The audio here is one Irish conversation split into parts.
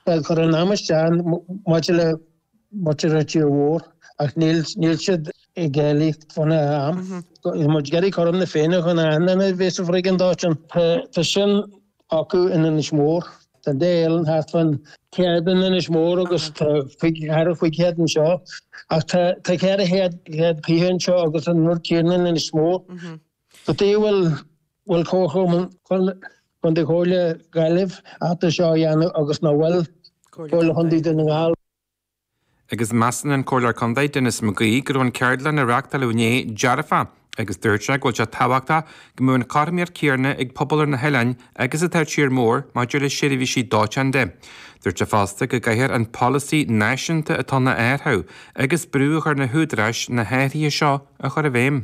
Ag cur an am isteach maidir le muintir Tír Mór ach níl siad ag éileamh. muid ag iarraidh cothrom na Féinne chun an mbeidh an bhriogáid dóiteáin. Tá sin acu in Inis Mór. Tá, déarfainn, thart fán céad in Inis Mór agus tá cúig, thar cúig chéad anseo. Ach tá ceithre chéad fiche anseo agus an rud céarna in Inis Mór. Cad tuige a bhfuil Comhairle Contae, Comhairle Gaillimh ábalta seo a dhéanamh agus nach bhfuil Comhairle Chontae Dhún na nGall. Agus measann an Comhairleoir Contae, Denis McGee, go raibh an cheardlann a reachtáileadh inné dearfach agus dúirt sé go bhfuil sé tábhachtach go mbeadh an chothromaíocht chéarna ag pobal ar na hoileáin agus atá ar tír mór maidir le seirbhísí dóiteáin de. Dúirt sé fosta go gcaithfear an polasaí náisiúnta atá ann a athrú agus brú a chur ar na húdaráis na hathruithe seo a chur i bhfeidhm.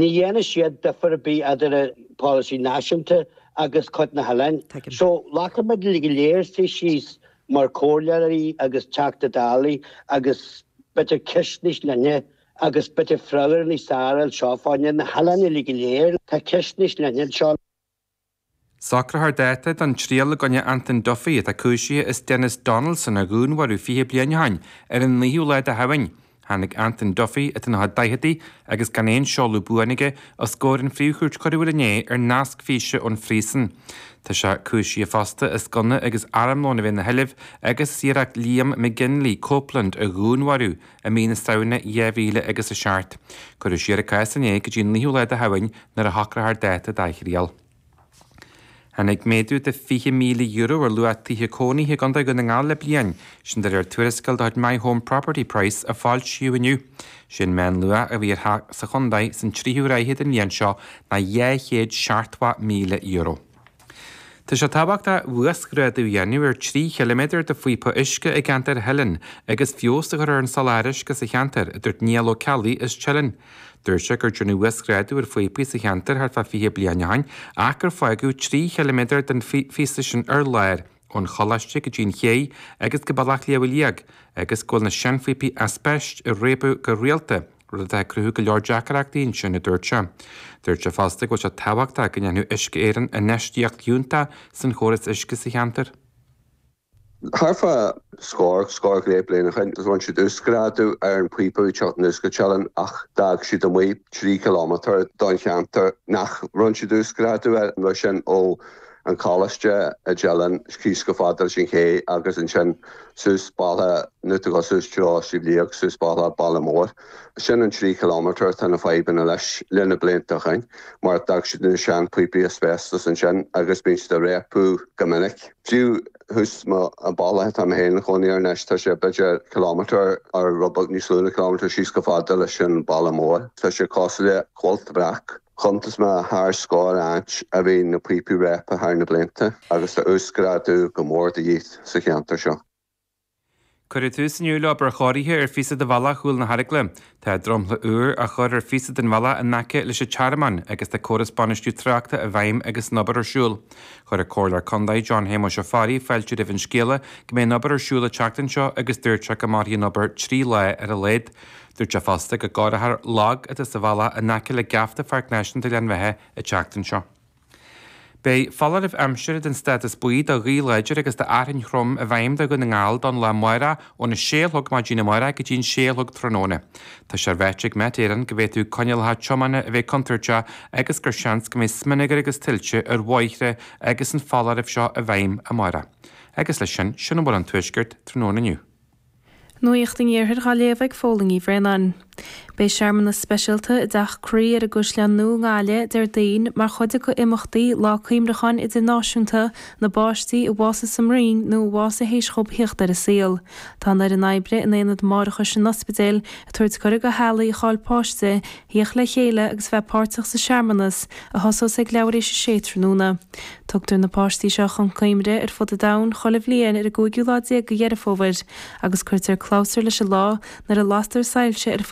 Ní dhéanfaidh siad difir ar bith eadar an polasaí náisiúnta agus cuid na hoileáin. So, caithfidh muid uilig go léir suí síos mar comhairleoirí agus Teachtaí Dála agus b'fhéidir ceist níos leithne agus b'fhéidir freagra níos fearr a fháil anseo fá na hoileáin uilig go léir. Tá ceist níos leithne anseo. Socrófar dáta don triail i gcoinne Antain Duffy atá cúisithe as Denis Donaldson a dhúnmharú fiche bliain ó shoin ar an naoú lá de Shamhain. Tháinig Antain Duffy, atá sna daicheadaí agus gan aon seoladh buan aige, os comhair an Phríomh-Chúirt Choiriúil inné ar nasc físe ón phríosún. Tá sé cúisithe fosta as gunna agus armlón a bheith ina sheilbh agus as iarracht Liam Copeland McGinley a dhúnmharú i mí na Samhna 2007. Cuireadh siar an cás inné go dtí an naoú lá de Shamhain nuair a shocrófar dáta dá thriail. Tháinig méadú de €20,000 ar luach tithe cónaithe i gContae Dhún na nGall le bliain, sin de réir tuarascáil de chuid My Home Property Price a foilsíodh inniu. Is é an meánluach a bhí ar theach sa chontae san tríú ráithe den bhliain seo ná €270,000. Tá sé tábhachtach uasghrádú a dhéanamh ar 3 chiliméadar de phíopa uisce i gceantar Theilinn agus feabhas a chur ar an soláthar uisce sa cheantar, a dúirt Niall Ó Ceallaigh as Teileann. Dúirt sé gur déanadh uasghrádú ar phíopaí sa cheantar thart fá 20 bliain ó shin ach gur fágadh 3 chiliméadar den phíosa sin ar lár. ón Choláiste go dtí an ché agus go Bealach Shliabh Liag, agus go bhfuil na seanphíopaí aispeist ag réabadh go rialta, rud atá ag cruthú go leor deacaireachtaí ansin, a dúirt sé. Dúirt sé fosta go bhfuil sé tábhachtach go ndéanfadh Uisce Éireann infheistíocht fhiúntach sa chóras uisce sa cheantar. Thart fá scór, scór go leith bliain ó shin rinn siad uasghrádú ar an phíopa an uisce i dTeileann ach d'fhág siad amuigh trí chilómetar den cheantar nach rinn siad uasghrádú air, sin ó an choláiste i dTeileann síos chomh fada leis an Ché agus ansin suas Baile na Dubha, suas treo Shliabh Liag, suas Baile Baile Mór. Sin an trí chiliméadar atá na fadhbanna leis le na blianta againn mar d'fhág siad na sean píopaí asbestos ansin agus bíonn siad ag réabadh go minic. Fiú thuas an bealach atá mé féin ag cónaí air anois tá sé b'fhéidir ciliméadar nó rud beag níos lú na ciliméadar síos chomh fada leis an Baile Mór. Tá sé cosúil le cuilt bhreac. Chuntas mé thar scór áit a bhíonn na píopaí réabtha thar na blianta agus tá uasghrádú go mór de dhith sa cheantar seo. Cuireadh tús inniu le obair chóirithe ar phíosa de bhealach Chúl na hEaragaile. Tá dromchla úr á chur ar phíosa den bhealach in aice leis an Tearmann agus tá córas bainistiú tráchta i bhfeidhm agus an obair ar siúl. Chuir an Comhairleoir Contae John Shéamais Ó Fearraigh fáilte roimh an scéala go mbeidh an obair ar siúl an tseachtain seo agus dúirt sé go mairfidh an obair trí lá ar a laghad. Dúirt sé fosta go gcóireofar lag atá sa bhealach in aice le geafta Pháirc Náisiúnta Ghleann Bheatha an tseachtain seo. Beidh foláireamh aimsire den stádas buí do ghaoth láidir agus d'fhearthainn throm i bhfeidhm do Dhún na nGall don lá amárach óna sé a chlog maidin amárach go dtí an sé a chlog tráthnóna. Tá sé ráite ag Met Éireann go bhféadfadh coinníollacha tiomána a bheith contúirteach agus gur seans go mbeidh smionagar agus tuilte ar bhóithre agus an foláireamh seo i bhfeidhm amárach. Agus leis sin, sin a bhfuil ón Tuaisceart tráthnóna inniu. Nuacht an Iarthair dhá léamh ag Póilín Uí Bhraonáin. Beidh searmanas speisialta i dTeach Croí ar an gCaisleán Nua i nGaillimh, Déardaoin, mar chuid de imeachtaí Lá Cuimhneacháin Idirnáisiúnta na bPáistí a bhásaigh sa mbroinn nó a bhásaigh théis dhóib theacht ar an saol. Tá an fhoireann oibre in Aonad Máithreachais an Ospidéil ag tabhairt cuireadh do theaghlaigh a chaill páiste Theacht le chéile agus bheith páirteach sa searmanas a thosós ag leathuair théis a sé tráthnóna. Tugtar na páistí seo chun cuimhne ar fud an domhain chuile bhliain ar an gcúigiú lá déag de Dheireadh Fómhair agus cuirtear clabhsúr leis an lá nuair a lastar soilse ar